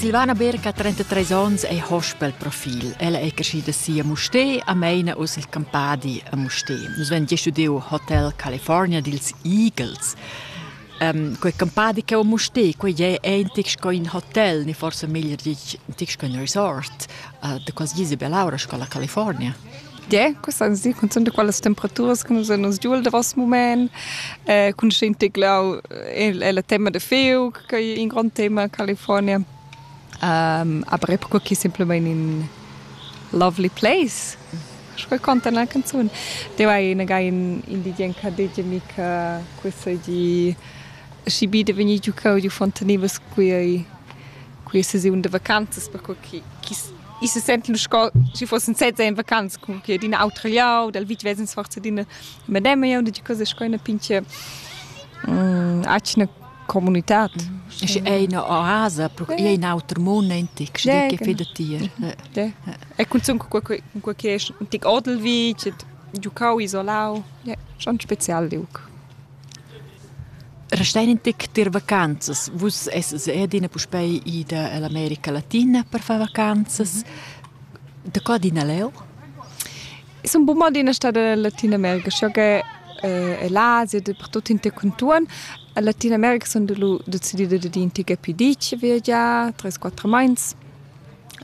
Silvana Berg ha 33 onns e Hochbildprofil. Ella è crescida si a Musté, a Meina u sil Campadi a Musté. Nus vegn studiu Hotel California dils Eagles. Um, quei campadi che a Musté, quei è eintig sco in hotel, ni forse meglier ditg, ein ein resort uh, de quasi Isabel Laura, scola California. Yeah, quest ans di cunzunt da quellas temperaturas che nus nos giul davos mument eh, cun schin tiglau è la tema da fiug che è un grande tema in California. Um, aber epoca qui simplement in lovely place. Sco conta na canzun. Te vai na gai in in di gen ka de mica questa di si bi de veni giu cau di fontanivas qui qui se si un de vacanzas per qui Ich se senten sco si fossen sezza in vacanz con che d'in autra liao dal vitg vesens forza d'ina mademia und die cosa sco una pinche mm, acna comunitad Es è una oasa, è in altro mondo antic, se dice che da tier. E cunzun con quel che è un tic odel vitg, giucau isolau, è schon spezial liuc. Restein in tic tier vacanzas. Vus essas er adina puspei ida ell'America Latina per far vacanzas. Da co adina leu? Sun buca adina stada en Latinamerika, sco che eh, l'Asia, dappertut in te contuorn. En Latinamerika sun decidida dad in tica più dici viagiar, tres quattro meins.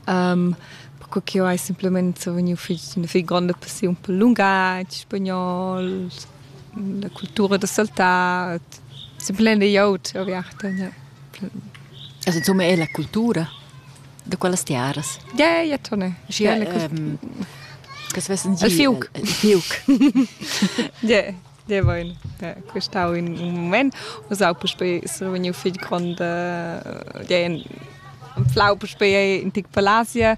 Um, perché che io hai semplicemente vegniu fich, una fich gronda passiun per lungatg, spagnol, la cultura da saltar, semplain da glieud aviarta. Ja. Also insomma è la cultura da quellas tiaras. Ja, ja, Tone. Ja, la ehm, Kas vessen Al fiuc. Al fiuc. Ja, ja vain. Questau in un moment. Was auch bei Sroveniu viel grande ja in Flau bei in Tic Palasia.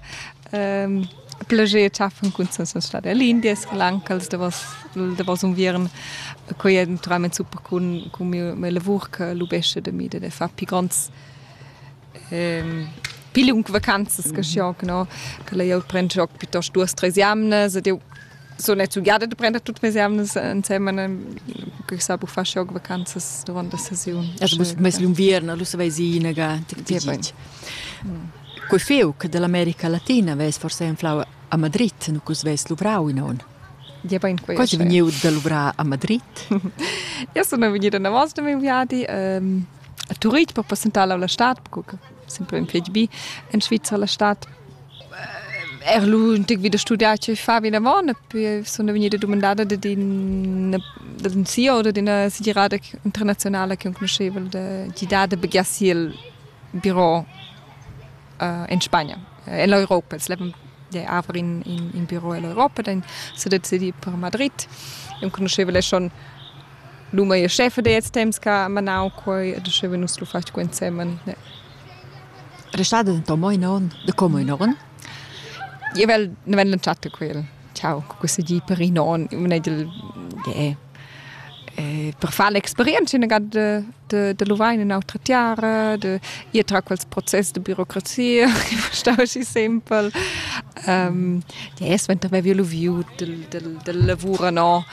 Ähm Plager cha fan cunzas a stad l'India, schlancals davos davos unviern. Quei è naturalment super cun cun miu mia lavur che lubescha da mi da far pi gronds ehm pi liung vacanzas che schiunca no, che la glieud prend gioc piuttost duos, tres jamnas ed eu so net giada de prender tutte mes emnes insieme che sa bu far jog vacanzas durante la sesiun. As bus mes l'inviern lu saveisina ga Quei feu che dell'America Latina ves forse inflau a Madrid, nu cus ves luvrau in on. Ja ben quei. Quasi vegniu da luvrar a Madrid. Ja sono vegnida navos da miei viadi ehm a Turit per passentare la stat sempre in fetg bi en Svizra la stat er lu un tic wieder studiar che fa wie davon so eine venire domandada de din da din CEO oder d'ina segirada internazionale che conosceva de gidar de begiassil bureau uh, in Spagna eh, in l'Europa es leben de aver in, in, in bureau in l'Europa dann so decidi per Madrid e conosceva le schon L'uma e scheffa dets temps ch'ha manau quei ed uscheva nus lu fatg ensemen. Ne. Restada denton mo in onn, da como in onn? Io vel, ne vel l'entschatta quel. Ciao, co questa gi per in onn, un egl de per far l'experienza in gad de de de luvain in autra tiara, de ir tra quels process de burocrazia che stava schi simpel. De es, ventar vevi lu viu del del del lavur no.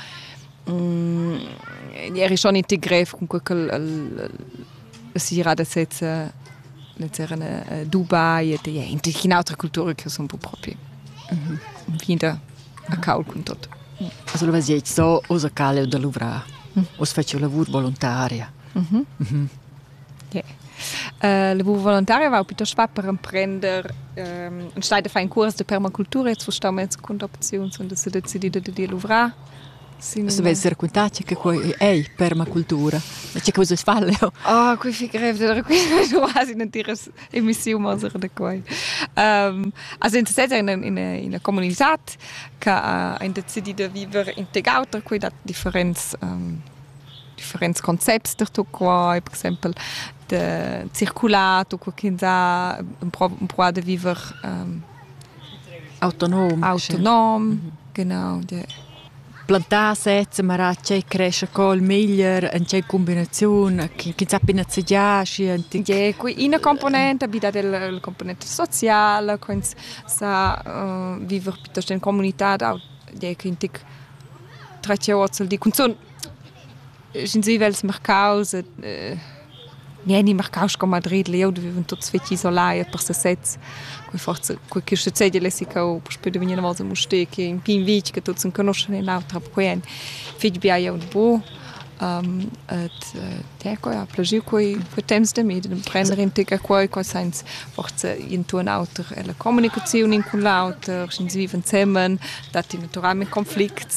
eri schon in grev comunque ch'el la sera da sezza era a Dubai ed è in'autra cultura che sono un po' proprio vinta a caul con tot. Also lo vas so osa caleu da luvrar. Os faci lavur volontaria. Yeah. Uh, lavur volontaria va piuttosto va per emprender um, und stehe da fare un corso de permacultura jetzt wo stau mezzo con opzioni und so decidito di dir luvrar Vus haveis raquintau tgi che quei ei permacultura. Ma tgi che vus fa leu? Oh, quei fi grev da raquintar quasi un'entira emissiun mosera da quei. Um, as interessat in ina ina comunitad che ha decidiu da viver in teg auter quei dat differents um, differents concepts da tu quai, per exempel de circulat u qualche sa un pro un pro da viver um, Autonom. Autonom, genau. Ja. Plantà sezza, ma era tgei cresce col meglier en tgei combinaziun, chi sappi nazegiar schi antic. Yeah, ina componente bi dat il, il componente social, quins sa uh, viver piuttosto in comunità da yeah, che antic 13 ozzel di cunzun Sin sivels mercaus e, eh, mi eni marcaus con Madrid, eu duvevan tuts fetg isolai e per sesez. Quei forza, quei che succede lessi che eu puspei vegni una volta a Mustec, in pin vitg che tuts conoscen e l'autra, perquei ein fetg bia eu bu. Um, et te coi ha plagiu quei quei temps de mi de prender in tega quei qua sens forza in tu un auter e la comunicazione in con l'auter sin viven zemen dat naturalmente conflicts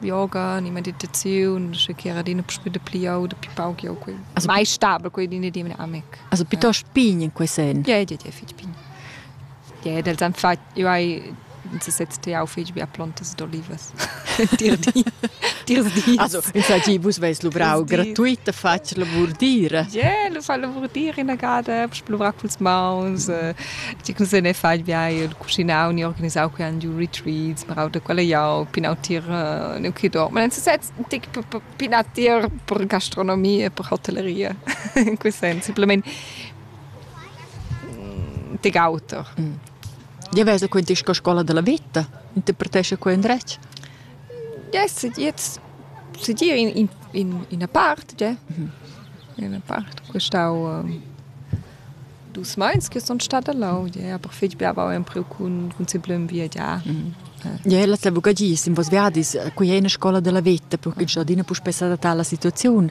yoga ni meditaziun sche che era adina puspè dapli jau dapli pauc jau quei also mai stabel quei d'ina di mia amic also piuttosto pign in quei sen ja ja ja fitg pign ja ed els han fatg io hai si setzt jau fitg bia plontas d'olivas dir di dir di also infatti vus veis luvrau gratuit da fatg lavur dira ja lu fa lavur dir ina gada puspè luvrar culs mauns ti cum se ne fai bia cuschinau ni organisau quei giu retreats, marau da quella jau, pinau tier uh, neu che dor. Ma sez tic pinar tier per gastronomia, per hotelleria, in quel senso, simplemente de auter. Mm. Ja vesa quindi che scuola della vita, interpretesce quei indretg? Yes, jetzt si dir in, in, in una parte, ja. Mm -hmm. In una parte. Quest'au uh, Dus meins che sun stat lau. Ia ha per fetg bler avau empriu cun, cun simplem viagiar. Ia è la bugagies in vos viadis. Quei è ina scola della veta, perché già adina puspè s'adattar alla situaziun,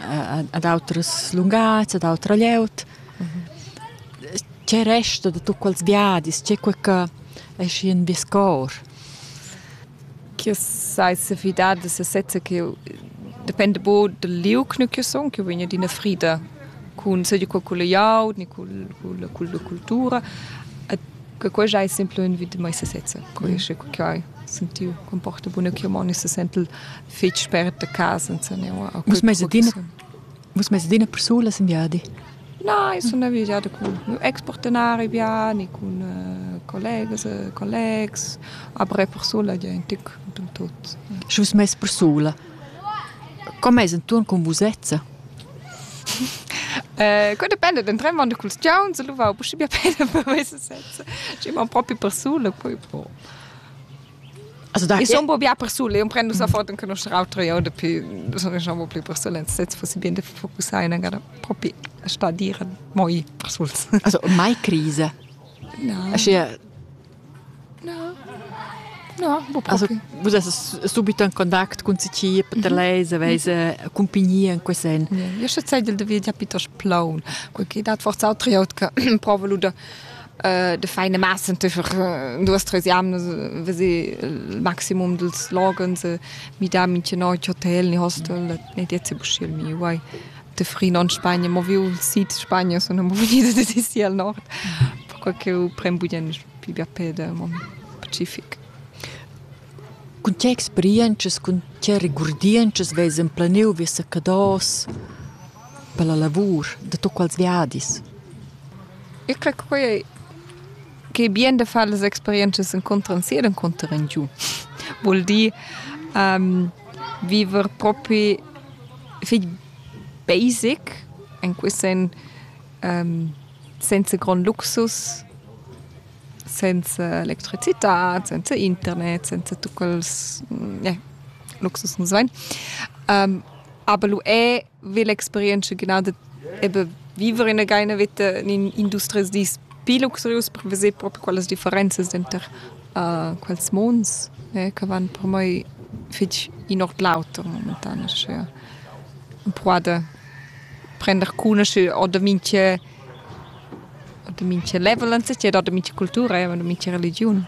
ad autras lunghezza, ad autra glieud. C'è resto da tutt quels viadis? C'è qualche esci in vies cor? ch'io sai sefidar da sesezza che depende bo dal liug nu ch'io sun, ch'io vegn adina frida cun seigi cul cul glieud ni cul culla culla cultura. E che quella ei sempre ün vit da mei sesezza. Quei è che hai sentiu con porta buna che io mo se sentel fetg spert a casa senza neu. Vus meis adina Vus mess adina persulas in viadi? Nein, sun ne vigiada cun expartenari viani, cun collegas e collegs, après persula gia in tic dil tut. Sche vus mess persula, co mess intuorn cun vusezza? Quei dependa den tremond culs giauns, lu va buschi bia bene per mei sezza. Schi mon propi persula, poi pro. Also da ich so un bia persul e un prend nus a fort che nostra autra io de più nus non riusciamo più persulen senza fosse bien de focussare in gara propi a sta dire moi persuls also mai crise no ascia no No, bo also, vous êtes subito en contact con ci per mhm. lei se vese compagnia in quel sen. Io sche sei del de via piuttosto plaun, quel che dat forza autre io che provo luda de feine Massen duas tres jamnas vesi il maximum dels logens mi da minche noit hotel ni hostel ne diezi buschiel mi uai de fri non Spagna mo viu sid Spagna sono mo venida de sisi al nord perquei che eu prem budien pi bia pede mon pacific Cun tge experientschas, cun tge regurdientschas vess emplaniu vies Sacados per la lavur da tuts quels viadis? Eu crer che quei ei che bien da far las experientschas encunter sia ed encunter en giu. Vul dir um, viver propi fich basic en quist sen um, senza grond luxus senza electricitad, senza internet, senza tut quels yeah, luxus nus vain. Um, aber lu è ve l'experienza genau de eben vivere in einer Wette in industries di più luxurius per vedere proprio quelle differenze dentro uh, quels monds eh, che vanno per me fitch in ord l'auto momentan ja. può prendere cune oder minche Da mincha level insatgè, da mincha cultura eir da mincha religiun.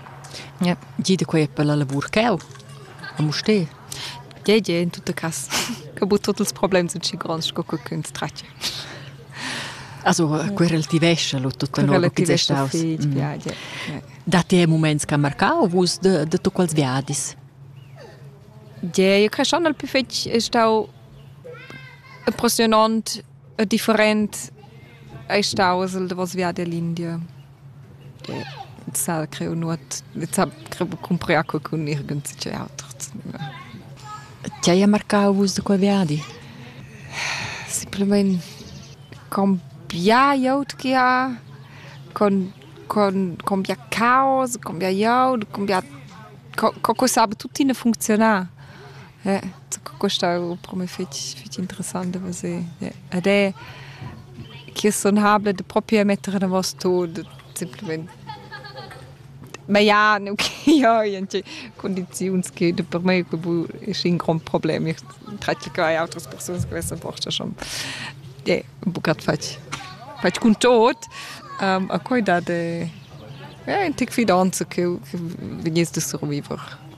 Ja, giü da quai per la lavur ch'eau a Mustér. Tgei giè in tutta cas ch'ho bod tuot ils problems in schi gronds sco cuccuns tratg. Also quel relativescha lo tut lur chi es staus. Datti e muments ch'han marcau vus da da tuot quels viadis? Giè, io creschan al plü fetg stau impressionant E different ei staus il davos viadi all'India. E ins sa creu nuot, ins ha creu cumprai acqua cun nirgends tgei auter. Ti hai marcau vus da quei viadi? Simplamain con bia glieud che ha, con, con, con bia caos, con bia glieud, con bia... co, co che sape tuttina funcziunar. Ja, questa è per me fitg, fitg interessant da vedere. Ja. Ed è che sun habla da propi mettere davos tut, semplamain. Ma ja, nu che ja in condiziuns che per me es in grond problem. Ich traccio che hai autras persunas che vessan forsa schon ja, bucat fatg, fatg cun tot. Um, a quai dat ja, in tic fidanza che vegniss da surviver.